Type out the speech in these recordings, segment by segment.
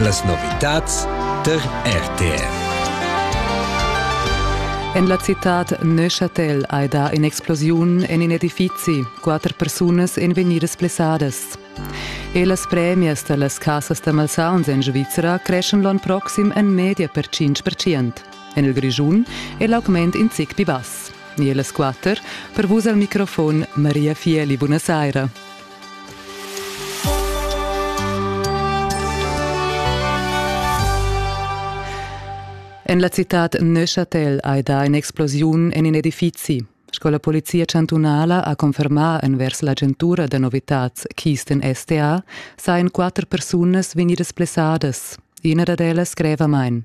Las novitads tar RTR. En la citad Neuchâtel hai dà in'explosiun en in edifizi, quatter persunas èn vegnidas blessadas. E las premias da las cassas da malsauns en Svizzera creschan l'onn proxim en media per 5%. En il Grischun è l'augment in zic pli bass. E las quatter, per vus al microfon Maria Fieli, buonasera. En la citad Neuchâtel hai dà in'explosiun en in edifizi. Sco la polizia chantunala ha confermà envers l'agentura da novitads Kisten STA sajan quatter persunas vegnidas blessadas. Ina dad ellas greva main.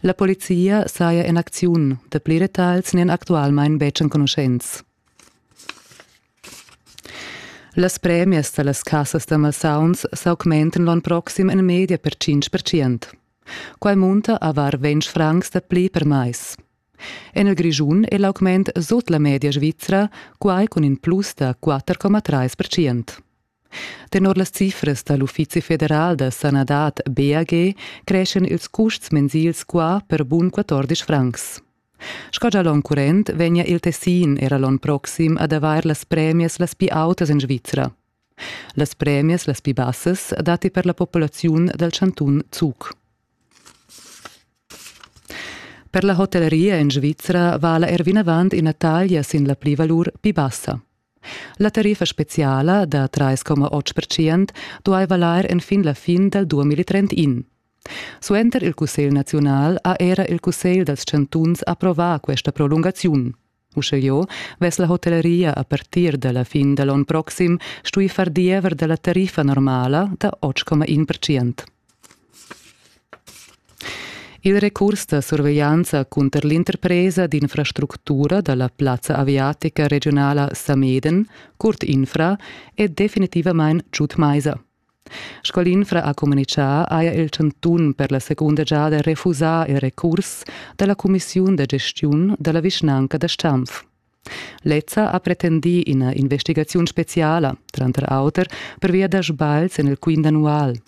La polizia saja en acziun. Dapli detagls n'èn actualmain betg enconuschents. Las premias da las cassas da malsauns s'augmentan l'onn proxim en media per 5%. Quai munta a var 20 francs dapli per mais. En il Grischun è l'augment sut la media svizra, quai cun in plus da 4,3%. Tenor las cifras da l'Uffizi federal da sanadad BAG creschan ils custs mensils qua per bun 14 francs. Sco gia l'onn current vegnia il Tessin era l'onn proxim ad avair las premias las pli autas en Svizra. Las premias las pli bassas datti per la populaziun dal chantun Zug. Per la hotelleria en Svizra vala er vinavant ina taglia sin la plivalur pli bassa. La tariffa speciala da 3,8 percent duai valair enfin la fin dal 2031. Suenter il Cussegl naziunal ha era il Cussegl dals chantuns approvà questa prolungaziun. Uschelieu vess la hotelleria a partir da la fin da l'onn proxim stui far diever da la tariffa normala da 8,1 percent. Il recurs da surveglianza cunter l'interpresa d'infrastructura da la plazza aviatica regiunala Sameden, Curt Infra, è definitivamain giud maisa. Sco l'Infra ha communitgà, haja il chantun per la segunda giada refusà il recurs da la cumissiun da gestiun da la vischnanca da Stampf. Lezza ha pretendì ina investigaziun speziala, tranter auter pervia da sbagls en il quint annual.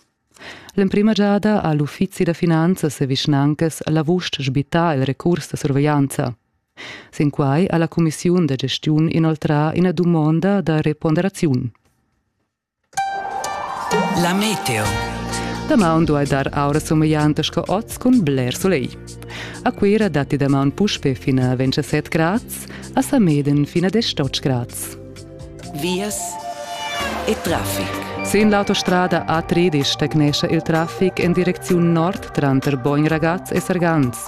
L'emprima giada ha l'uffizi da finanzas e vischnancas l'avust sbittà il recurs da surveglianza. Sin quai ha la cumissiun da gestiun inoltrà ina dumonda da reponderaziun. La meteo. Damaun duai dar aura sumeglianta sco oz cun bler sulegl. A Cuira datti damaun puspe fin a 27 grads, a Sameden fin a 18 grads. Vias e traffic. Sin l'autostrada A3 stagnescha il traffic en direcziun nord tranter Bogn Ragaz e Sargans.